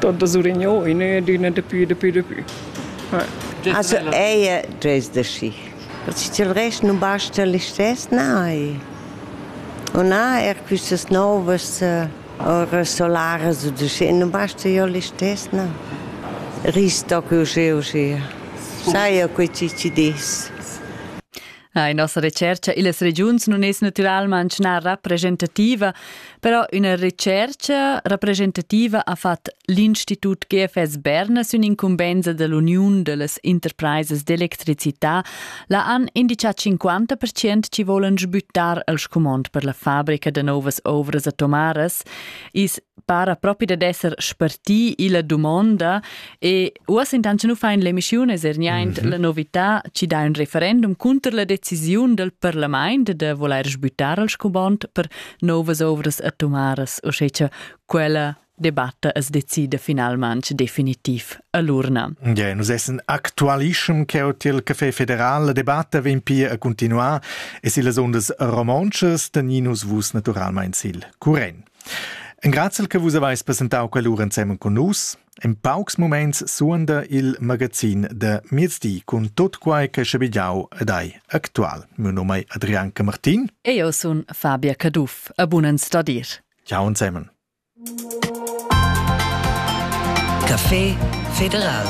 Tonta Surignau in adüna dapü, dapü, dapü. Also ella dres da schi. Perché til rest non basta listess, nein. O na, er quistas novas ora solaras o da schi, non basta jo listess, no. Risto che uscì uscì. Sai jo quei ci ci dis. La nossa recerca illas regiuns non es natüralmaing na rappresentativa, però üna recercha rappresentativa ha fat l'Institut GFS Berna sün incumbenza dell'Uniun dellas Interpraisas d'electricità, la han indichà 50% chi volan sbüttar al scumond per la fabrica da novas ouvras atomaras. Is para propi dad esser spartì illa dumonda e uoss intant cha nu fain l'emischiun es er niaint mm -hmm. la novità chi dà ün referendum cunter la decisiun dal parlamaint da volair sbüttar al scubond per nouvas ouvras atomaras, uschè cha quella debatta as decida finalmaing definitiv a l'urna. Yeah, nus essen actualischem ch'eu til Café Federal la debatta vegn pia a continuar e sillas ondas romontschas teninus vus naturalmain sil curren. Engrazel che vus haveis presentau quell'ura ensemen con nus. In paucs moments suonda il magazin de miezdi cun tot quai che schabigliau ed ei actual. Mio nome è Adrian Camartin. E io sun Fabia Caduff. A bunen stadir. Ciao ensemen. Café Federal